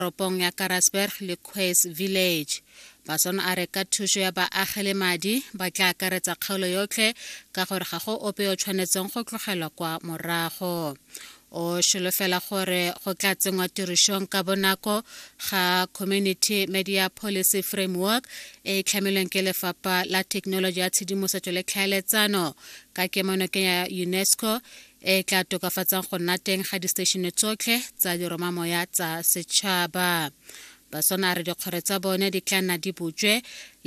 toropong ya karasberg le quays village bason a re ka thuso ya baagi le madi ba tla akaretsa kgaolo yotlhe ka gore ga go ope o tshwanetseng go tlogelwa kwa morago o solofela gore go tla tsenngwa tirišong ka bonako ga community media policy framework e e tlhamilweng ke lefapha la thekenoloji ya tshedimosetso le tlhaeletsano ka kemonokeng ya unesco e e tla tokafatsang go nna teng ga diseteišene tsotlhe tsa diromamoya tsa setšhaba baswana a re dikgwere tsa bone di tla nna di butswe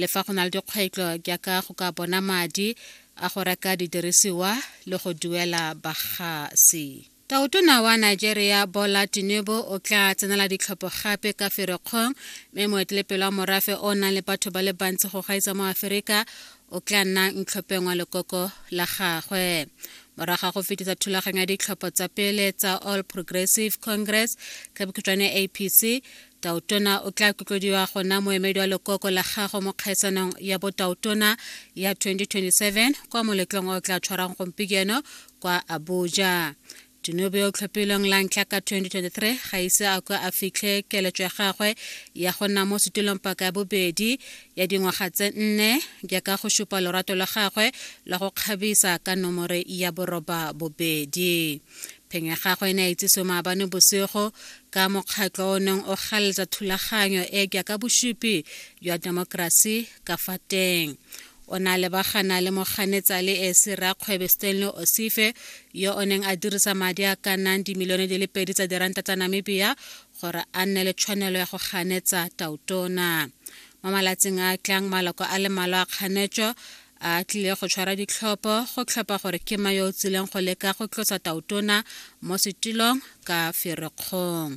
le fa go na le dikgwetlho jaaka go ka bona madi a go reka didirisiwa le go duela bagasi taotona wa nigeria bola tinubu o tla tsenela ditlhopho gape ka ferekgong mme moetelepele wa morafe o nang le batho ba le bantsi go gaisa mo aferika o tla nna ntlhopheng wa lekoko la gagwe morago ga go fetisa thulaganyo ya ditlhopho tsa pele tsa all progressive congress ka bokhutšwane apc tautona o tla kotlodiwa go nna moemedi wa lekoko la gago mo kgaiswanong ya botautona ya 2027 kwa moletlong o tla tshwarang gompieno kwa abuja Dinobe yo o tlhophilweng la ntlha ka 2023 ga ise a kwa a fitlhe keletso ya gagwe ya go nna mo setulong paka ya bobedi ya dingwaga tse nne jaaka go supa lorato la gagwe la go kgabisa ka nomore ya boroba bobedi. Pheng ya gagwe e ne ya itsisiwe maabane bosigo ka mokgatlho o neng o galetsa thulaganyo e jaaka bosupi jwa temokerasi ka fa teng. o ne a lebagana le moganetsa le ese rakgwebe stanley osife yo o neng a dirisa madi a ka nnang dimilione di le pedi tsa diranta tsa namibia gore a nne le tshwanelo ya go ganetsa tautona mo malatsing a tlang maloko a le malo a kganetso a tlile go tshwara ditlhopho go tlhopha gore ke ma yo o tsileng go leka go tlosa tautona mo setilong ka ferekgong